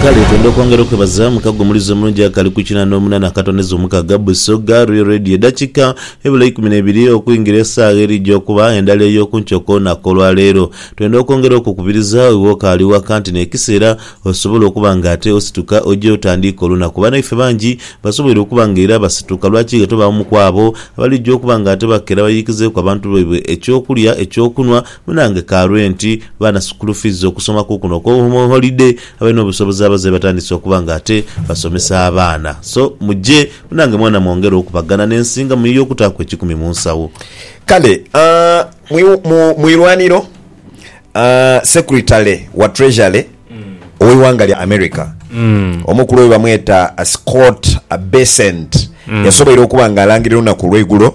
Kale twende okwongera okwebaza mukago omulizi omulungi akali ku kinana omunana akatondeza omukaga Busoga Real Radio edakika ebula eikumi nebiri okuingira esagha erija okuba endala eyokunkyo kolunaku olwaleero. Twenda okwongera okukubiriza iwe okaali waka nti nekisera osobola okuba nga ate osituka oje otandiike olunaku. Banaife bangi basoboire okuba nga era basituka lwaki ghe tobaamu kwabo abalija okuba nga ate bakera bayikizeeku abantu baibwe ekyokulya, ekyokunwa, Munange ka lwe nti baana sukulu fiizi okusoma kukuno okwo holide abalina obusobozi abazaire batandise okuba nga ate basomesa abaana so muje munange mwana mwongere okubagana nensinga muyiye okutaku ekikumi munsawo. Kale mu mu irwaniro secretary wa treasury oweighanga lya America omukulu webamweta Scott Bessent yasoboire okuba nga alangirira olunaku olweigulo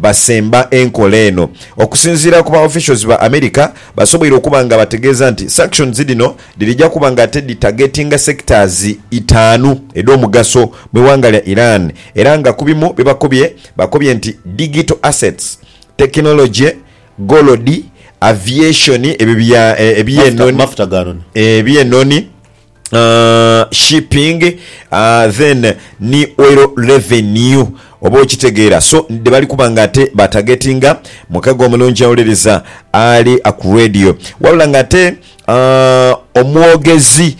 Basemba enkola eno. Okusinziira ku ba officials ba America, basoboire okuba nga bategeeza nti sanctions dhino dhirija kuba nga ate dhi targetinga sectors itaanu edh'omugaso mu ighanga lya Iran era nga ku bimu bye bakobye, bakobye nti digital assets, technology, gold, aviation, ebyo bya ebyenoni, ebyenoni, shipping then ni oil revenue oba okitegeera so dhebali kuba nga ate batagetinga mukago omulungi awuliriza ali ku radio wabula nga ate omwogezi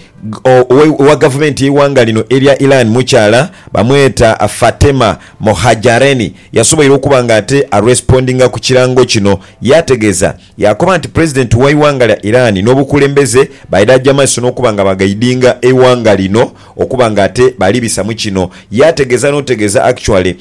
owa gavumenti y'eighanga lino erya Iran mukyala bamweta Fatema Mohajareni yasoboire okuba nga ate arespondinga ku kirango kino yategeeza Yaakoba nti Pulezidenti w'eighanga lya Iran n'obukulembeze baidhaja maiso n'okuba nga bagaidinga eighanga lino okuba nga ate bali bisamu kino. Yaategeeza n'otegeeza actually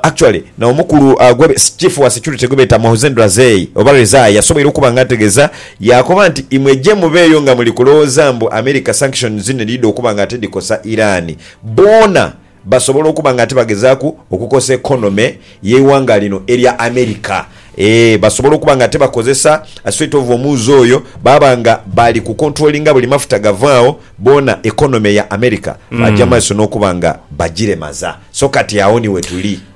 actually na omukulu gwe Chief wa security gwebeeta Mohsen Razei oba Rezai yasoboire okuba nga ategeeza yaakoba nti imwe je mubeeyo nga muli kulowooza mbu America sanctions dhino edhidha okuba nga ate dhikosa Iran boona Basobola okuba nga ate bagezaaku okukosa economy y'eighanga lino erya America. Eeh basobola okuba nga ate bakozesa sweat of omuuzi oyo baaba nga bali ku controllinga buli mafuta gavaagho boona economy ya America baaja mumaiso n'okuba nga bagiremaza. So kati agho ni wetuli.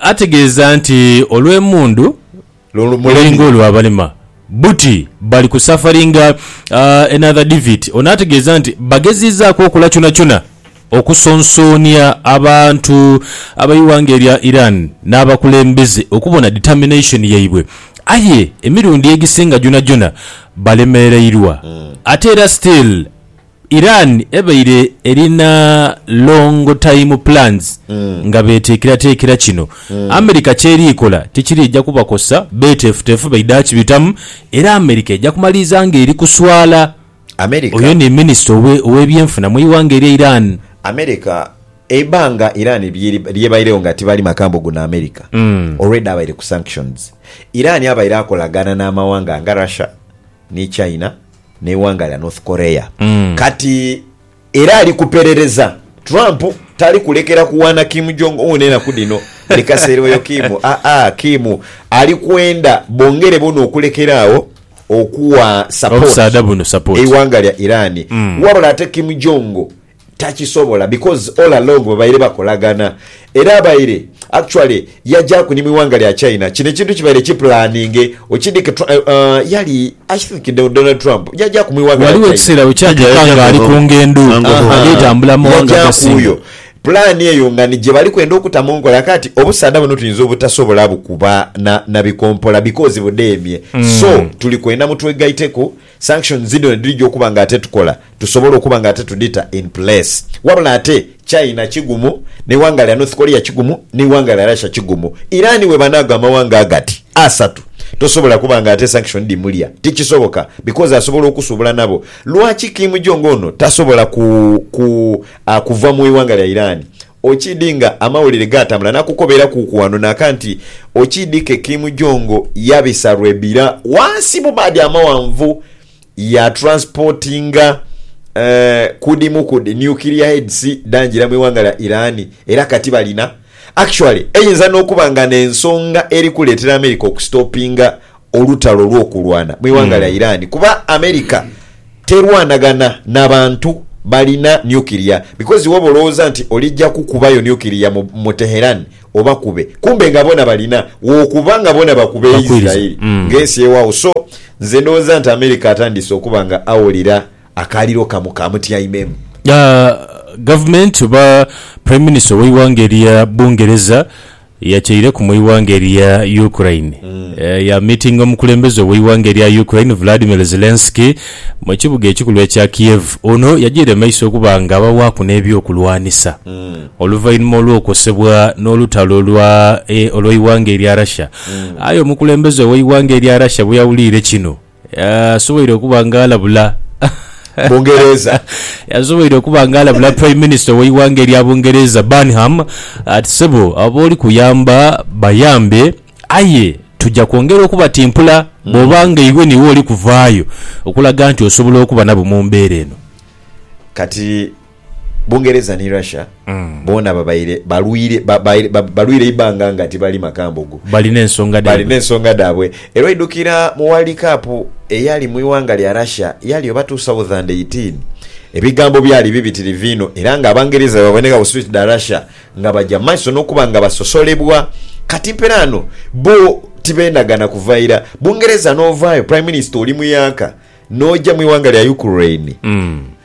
Ategeeza nti olw'emundu lulinga olwa balema buti bali ku safaringa another defeat. Ono ategeeza nti bagezizaaku okola kyonakyona okusonsoonia abantu ab'eighanga erya Iran n'abakulembeze okubona determination yaibwe aye emirundi egisinga gyonagyona balemereirwa ate era still. Iran ebaire erina long time plans nga beteekerateekera kino America ky'eri kola tikiriija kubakosa, beeteefuteefu baidha kibitamu era America eja kumaliriza ng'eri kuswala. America Oyo ni minisita owe ow'ebyenfuna mu ighanga erya Iran. America eibanga Iran lyeri lyebairegho nga tibali maka mbu guno America already abaire ku sanctions. Iran abaire akolagana n'amawanga nga Russia, ni China n'eighanga lya North Korea kati era ali kuperereza. Trump tali kulekera kuwaana Kim Jong Un enaku dhino buli kaseera oyo Kim aa Kim ali kwenda bongere boona okulekera agho okuwa support eighanga lya Iran wabula ate Kim Jong takisobola because all along babaire bakolagana era abaire actually yajaku ni mwiwanga lya China kino ekintu kibaire ki planinge okidike Tru uh yali I think Donald Trump yajaku mwiwanga lya Ghaligho China ekiseera bwe Tija kyatuuka yaja ng'ali kuno ku ngendo Sango Aha Hall. ageetambula mu mawanga yaja agasinga. kuyo plan eyo nga ni gye bali kwenda okuta mu nkola kaati obusaadha buno tuyinza obutasobola bukuba na na bikompola because budheemye so tuli kwenda mutwegaiteku Sanctions dhino nedhija okuba nga ate tukola tusobola okuba nga ate tudhita in place. Wabula ate China kigumu, neighanga lya North Korea kigumu, neighanga lya Russia kigumu. Iran webanaago amawanga agati asatu tosobola kuba nga ate sanction dhimulya. Tikisoboka because asobola okusuubula nabo. Lwaki Kim Jong Un tasobola ku ku kuva mu ighanga lya Iran? Okiidhi nga amawulire gaatambula nakukobeera kuuku wano naaka nti okiidhi ke Kim Jong yabisa lwebira wansi mu maadhi amawanvu ya transportinga ku dhimu ku dhi nuclear heads dhangira mu iwanga lya Iran era kati balina actually eyinza nokuba nga nensonga eri kuleetera America oku stoppinga olutalo olw'okulwana mu ighanga lya Iran kuba America terwanaghana na bantu balina nuclear because woba olowooza nti olija kukubayo nuclear mu mu Teheran obakube kumbe nga bona balina wokuba nga bona bakube Bakuiriza. Israel Mm. nga ensi ewaawo so nze ndowooza nti America atandise okuba nga awolera akaaliro kamu kamutyaimemu. Ah, Gavumenti oba Prime Minister ow'eighanga erya Bungereza Yakyaireku mu ighanga erya Ukraine ya miitinga omukulembeze ow'eighanga erya Ukraine Vladimir Zelensky mu kibuga ekikulu ekya Kiev. Ono yagiire maiso okuba nga abawaaku n'ebyokulwanisa oluvainhuma olw'okosebwa n'olutalo olwa e olw'eighanga erya Russia. Aye omukulembeze ow'eighanga erya Russia bweyawuliire kino, Asoboire okuba nga alabula Bungereza. Asoboire okuba nga alabula Prime Minister w'eighanga erya Bungereza, Burnham, ati, Ssebo, abo b'oli kuyamba bayambe, aye tuja kwongera okubatimpula bw'oba nga iwe n'iwe oli kuvaayo okulaga nti osobola okuba nabo mu mbeera eno. Kati Bungereza ni Russia boona babaire balwire balwire eibanga nga tibali makambugu. Balina ensonga dhaibwe. Balina ensonga dhaabwe. Era oidhukira mu World Cup eyali mu ighanga lya Russia yali oba two thousand eighteen, ebigambo byali bibitirivu inho era nga Abangereza bwebaboneka ku street dha Russia nga baja mu maiso n'okuba nga basosolebwa. Kati mperaano bbo tibeenagana kuva ira. Bungereza n'ovaayo, Prime Minister oli muyaaka. N'oja mu ighanga lya Ukraine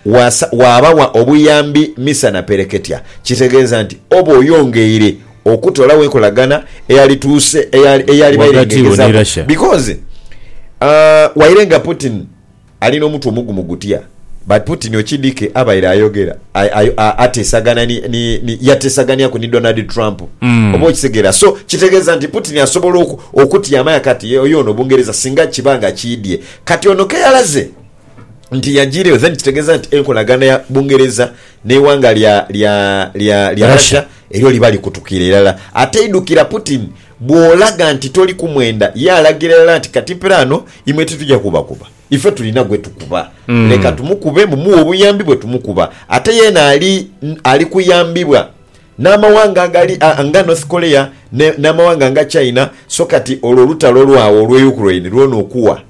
wasa waabawa obuyambi misa na pereketya, kitegeeza nti oba oyongeire okutoolawo enkolagana eyalituuse eyali eyali Ghagati wo ni bairengegezaaku Russia. because aah waire nga Putin ali n'omutwe omugumu gutya but Putin okidhike abaire ayogera ay- ay- a- ateesagana ni ni ni yateesaganiaku ni Donald Trump oba okitegeera so kitegeeza nti Putin asobola oku okutyama yakati ye oyo ono Bungereza singa kiba nga kiidhye Kati ono keyalaze nti yajiireyo then kitegeeza nti enkolagana ya Bungereza n'eighanga lya lya lya lya Russia elyo liba likutukiire irala. Ateidhukira Putin bw'olaga nti toli ku mwenda ye alagira irala nti kati mpira ano imwe titugya kubakuba. Ife tulina gwe tukuba. Leka tumukube mumuwe obuyambi bwe tumukuba. Ate yeena ali ali kuyambibwa N'amawanga agali nga North Korea n'amawanga nga China, so kati olwo olutalo lwagho olw'e Ukraine lwona okuwa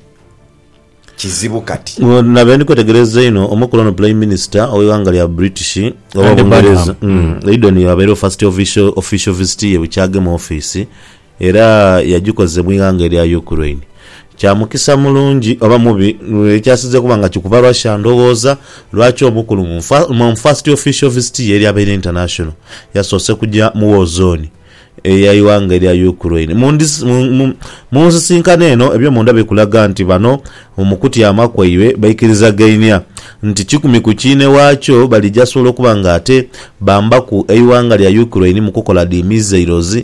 kizibu kati. Nabaire ndi kwetegereza inho omukulu ono Prime Minister ow'eighanga lya British oba Bungereza, Eidon y'abaire first official visit ye bwe kyagema ofiisi. Era yagikozesa mu ighanga erya Ukraine. Kya mukisa mulungi oba mubi, ekyasinze kuba nga kikuba Russia ndhoghoza, lwaki omukulu mu first official visit ye eryabaire international yasoose kugya mu war zone eya ighanga erya Ukraine. Mu nsisinkano eno ebyomunda bikulaga nti bano mu kutyama kwaibwe baikirizagainia nti kikumi ku kiine waakyo balija sobola okuba nga ate bambaku eighanga lya Ukraine mu kukola dhi missiles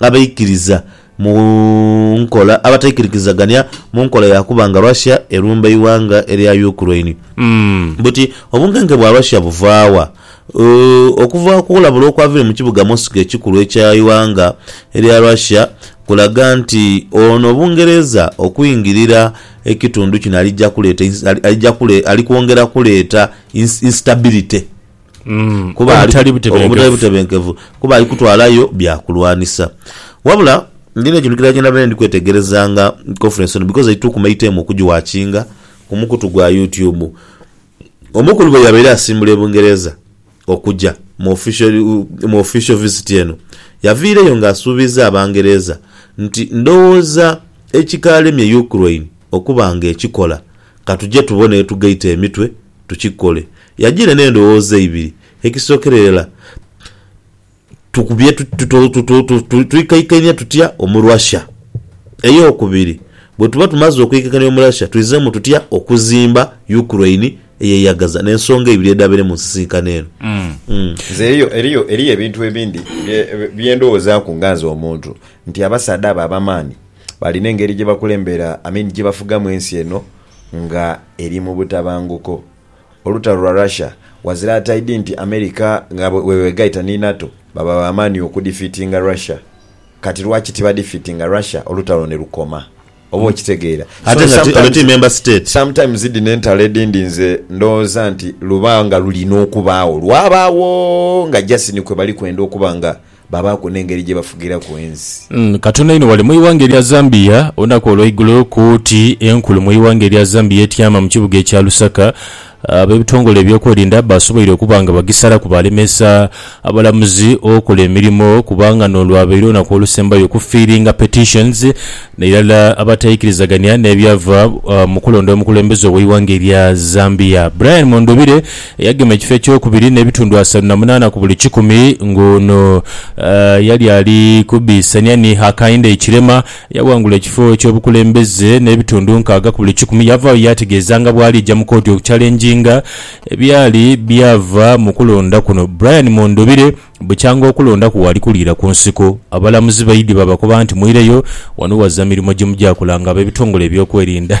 abaikiriza mu nkola abataikirikizagania mu nkola ya kuba nga Russia erumba eighanga erya Ukraine. Buti obunkenke bwa Russia buvaa wa? Okuva ku kulabula okwavire mu kibuga Moscow ekikulu ekya eighanga erya Russia kulaga nti ono Bungereza okwingirira ekitundu kino alija kuleeta ali kwongera kuleeta instability. obutali butebenkevu, kuba ali kutwalayo bya kulwanisa. Wabula ndi n'ekintu kilala kye nabaire ndi kwetegerezanga mu conference eno because eitukuma eiteemu okugiwakinga ku mukutu gwa YouTube. Omukulu bwe yabaire asimbula e Bungereza okuja mu official, mu official visit eno, yaviireyo ng'asuubiiza Abangereza nti, Ndowooza ekikaalemye Ukraine okuba ng'ekikola, ka tuje tubone yetugaita emitwe tukikole. Yajiire n'endhowooza ibiri. Ekisookerera, twikaikania tutya omu Russia? Ey'okubiri, bwe tuba tumaze okwikaikania omu Russia, twizeemu tutya okuzimba Ukraine eyeyagaza? N'ensonga ibiri edhabaire mu nsisinkano eno. Nze eriyo, eriyo ebintu ebindi bye ndhowoozaaku nga nze omuntu nti abasaadha abo ab'amaani balina engeri gye bakulembera, I mean gye bafugamu ensi eno nga eri mu butabanguko. olutalo lwa Russia ghazira ataidhi nti America nga bwebwegaita ni NATO baba ba maani okudifiitinga Russia. Kati lwaki tibadifiitinga Russia olutalo ni lukoma? Oba okitegeera? So sometimes, sometimes dhino entalo edhindi nze ndhoghoza nti luba nga lulina okubaagho, lwabaagho nga just ni kwebali kwenda okuba nga Baabaaku n'engeri gye bafugiraku ensi. Katonda inho wali mu ighanga erya Zambia olunaku olweigulo kooti enkulu mu ighanga erya Zambia etyama mu kibuga ekya Lusaka abebitongole ebyokwerinda basoboire okuba nga bagisalaku balemesa abalamuzi okola emirimo kubanga nolwabaire olunaku olusembayo okufiiringa petitions nairala abataikirizagania nebyava mukulonda omukulembeze oweighanga erya Zambia Brian Mundubire Eyagema ekifo ekyokubiri n'ebitundu asatu na munaana ku buli kikumi ng'ono yali ali kubiisania ni Hakainde Hichilema eyaghangula ekifo eky'obukulembeze n'ebitundu nkaaga ku buli kikumi. Yavaayo yaategeeza nga bw'aliija mu kooti okucalenjinga ebyali byava mu kulonda kuno. Brian Mondobire, Bukyanga okulonda kwewaali kuliira ku nsiko, abalamuzi baidhi baabakoba nti mwireyo, wano waza mirimo gye mugya kola ng'abebitongole ebyokwerinda.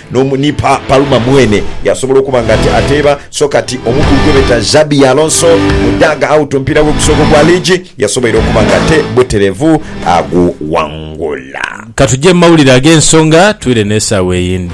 N'omu, ni pa, Palma mwene yasobola okuba nga ati, ateeba. So kati, omukulu gwe beeta Xabi Alonso, mu daaga out, omupiira gwe ogusooka ogwa liigi, yasoboire okuba nga ate buterevu aguwangula. Ka tuje mu mawulire ag'ensonga, twire n'esaawa eyindi.